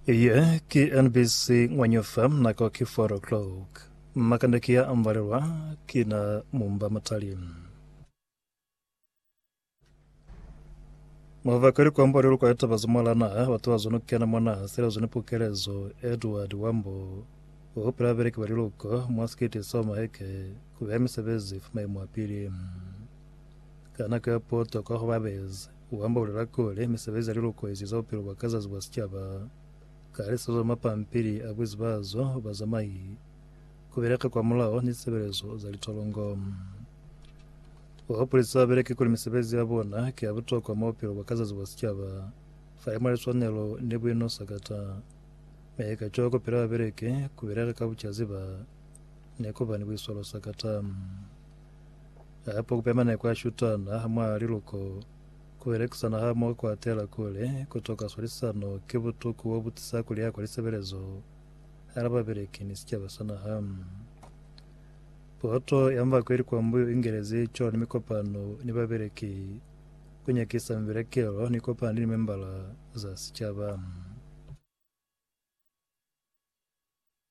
Iye ki NBC Ngwanyufa, nako ki 4 o'clock. Makande ki ya ambalelwa ki na mumba matali. Mavaka likwambo li lukwa litaba za mwalana batu ba zona kukena mona selezo ni pukelezo Edward Wambo o pela beleki ba liluko mwa sikiti sa maheke ku beha misebezi fa maimo a pili ka nako ya poto kwa hobabezi U ambaulela kuli, Misebezi ya lilukoezi za bupilo bwa ka zazi bwa sicaba, ka lisezo la mapampili a buezi ba zo, bazamai, ku beleka kwa mulao, ni lisebelezo za litolongo. U hupulisa babeleki kuli misebezi ya bona ki ya butokwa mwa bupilo bwa ka zazi bwa sicaba, falimwa liswanelo ni buinosakata. Mi kacwalo ku pila babeleki, ku beleka ka bucaziba, ni ku ba ni buiswalo sakata. Hape ku pema nako ya shutana ha mwa liluko, ku belekisana ha moho kwa tela kuli ku toka swalisano ki butuku bo bu tisa ku liha kwa lisebelezo hala babeleki ni sicaba sa naha. Poto ya mba kweli kwa mbuyu i ngelezi co ni mikopano ni babeleki ku nyakisa mibelekelo ni kopano ni limembala za sicaba.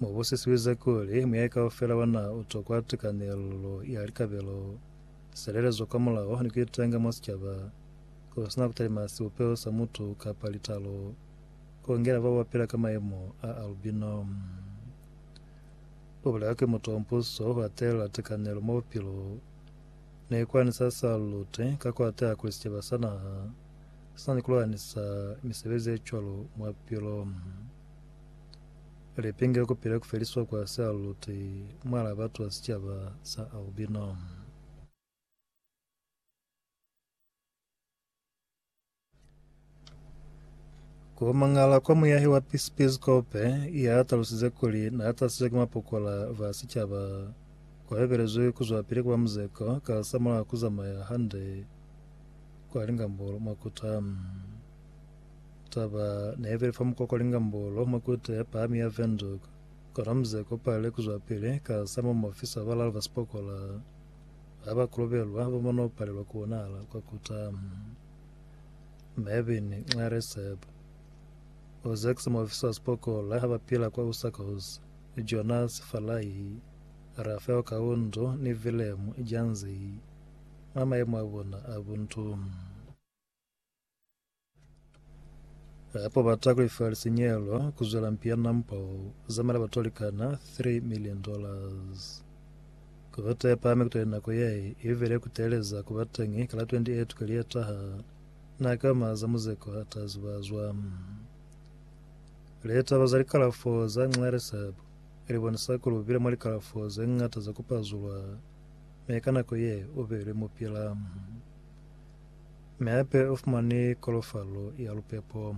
Mu busisize kuli muyayi kaufela wa naha u tokwa tikanelo ya likabelo, silelezo kwa mulao ni ku itenga mwa sicaba, ku si na ku talima sibupeho sa mutu kapa litalo, ku ngela bao ba pila ka mayemo a albino. U bulela kuli mutu wa mupuso u hatelela tikanelo mwa bupilo, mi kwani sa sa lute ka ku hateha kuli sicaba sa naha si na ni ku lwanisa misebezi ye cwalo mwa bupilo. Lipingi li kupile ku feliswa kwa sialuti mwalaa batu ba sicaba sa albino. Ku mangala kwa muyahi wa pisikope ya talusize kuli na tahasizwe ki mapokola ba sicaba kwa bebelezwi ku zwapili ku ba muzeko ka lisamulaho ku zamaya hande kwa lingambolo mwa kuta. Taba ne ibile fa mukoko Lingambolo mwa Kute ya Pahami ya Windhoek, ko na muze ko palile ku zwapili ka sa mo muofisa wa balalu ba sipokola ba ba kolobelwa ba mo no palelwa ku bonahala kwa kuta. Mervyn Nxareseb, o zekize muofisa wa sipokola ba pila kwa Usakos, Jonas Falahi, Rafeo Kaundu ni Willem Janzey mwa mayemo a bona a buntu. Ha ba bata ku lefa lisinyehelo ku zwela mpi ya nampa u zamela batu ba likana 3 million dollars. Ku bata ya pahami kutali nako ye i vele ku teeleza ku ba teñi ka la 28 kweli ye taha, na ki oma za muzeko ha ta zibazwa. Litaba za likalafo za Nxeresab li bonisa kuli u bile mwa likalafo ze ñata za ku pazulwa, mi ka nako ye u beilwe mupila. Mi hape ufumani kolofalo ya lupepo.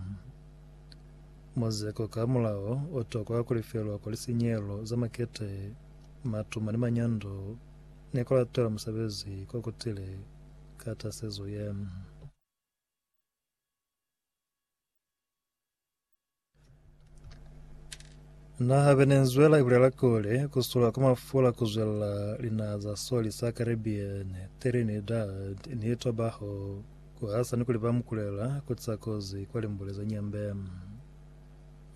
Muzeko ka mulao otokwa kulifelwa kwa lisinyehelo za makete, matuma ni manyando, ni kulatela musebezi ko kutile ka tasezo ye. Naha Venezuela ibulela kuli kusula kwa mafula kuzwela linaha za soli sa Caribbean, Trinidad ni Tobago kuhasa ni kulipa mukulela kutisa kozi kwa limbule za nyambe.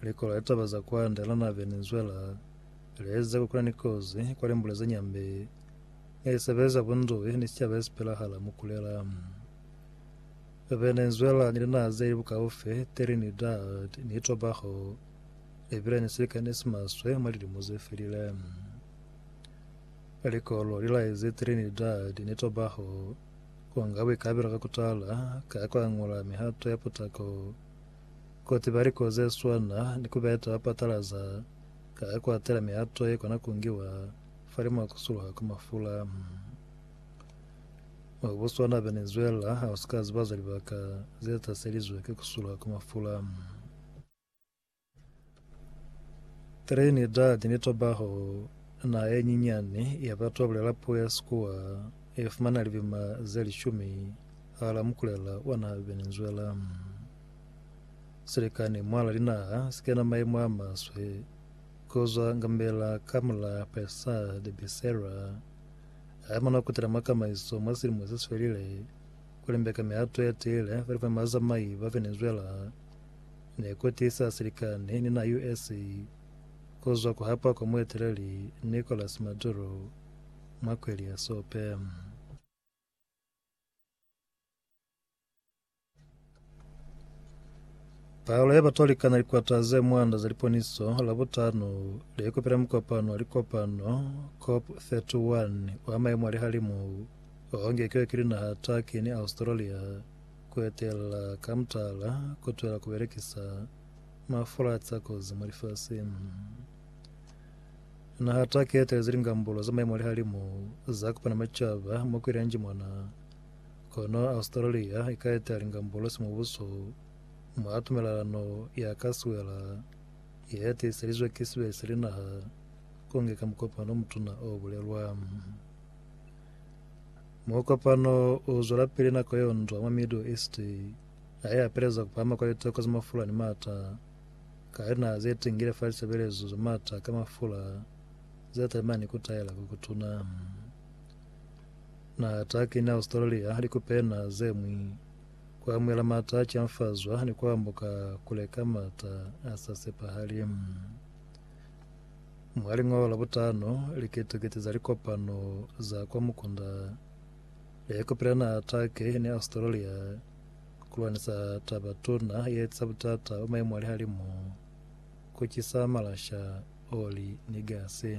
Likolo la litaba za kwande la naha Venezuela lieza kuli kuna ni kozi kwa limbule za nyambe nge lisebeleza bunduwi ni sicaba yesipelahala mukulela. Venezuela ni linaha zeli bukaufi, Trinidad ni Tobago, libile ni silikani simaswe mwa lilimo zefelile. Likolo lilaezi Trinidad ni Tobago kunga buikabelo ka kutala ka kuangula mihato ya putako, kutiba liko zeswana ni kubeta bapatalaza ka kuatela mihato yekona kungiwa fa limo kusuluha kwa mafula. Wa Botswana Venezuela ha usika ziba za libaka ze taselizwe ki kusula kwa mafula. Trinidad ni Tobago, naha ye nyinyani ya batu ba bulela puo ya Sikuwa, ye fumana libima ze lishumi hala mukulela wa naha Venezuela. Silikani mwala linaha si kena maimo a maswe, ku zwa Ngambela Kamla Pessah de Becerra, Ha mona kutela mwa kamaiso mwa silimo se si felile, ku limbeka mihato ya tiile kuli fa bazamai ba fe ni zwela, ne ku tiisa silikani ni na US ku zwa ku hapa kwa mueteleli Nicolas Maduro mwa kweli ya sope. Palo ya batwalikana likwata ze mwanda za liponiso Labutano leikopela mukopano wa likopano COP31 wa maemo a lihalimu o ngekiwe ki linaha Turkey ni Australia ku etela ka mutala ku twela ku belekisa mafula a tsa kozi mwa lifasing. Naha Turkey e etelezi lingambulo za maemo a lihalimu za Kupana Macaba mo ku ilanjimwana Kono Australia i ka ita lingambolosi mubuso mwa tumelelano ya ka siwela ye tiiselizwe ki sibe se linaha ku nge ka mukopano o mutuna o bulelwa. Mukopano u zwelapili nako yo ndwa mwa Middle East ha i apeleza ku pahama kwa litoko za mafula ni mata ka linaha ze tingile fa lisebelezo za mata ka mafula ze talimani ku taela ku kutuna. Na ta kina Australia ni kupena zemwi, ku amuhela mata a canfazwa ni ku ambuka kule ka mata a sa sepahali. Mwa lingoho la butano, likete-kete za likopano za kwa mukunda le kupila naha Turkey ni Australia ku lwanisa taba tuna ye etsisa butata bwa maimu a lihalimu, ku cisa malasha, oli ni gasi.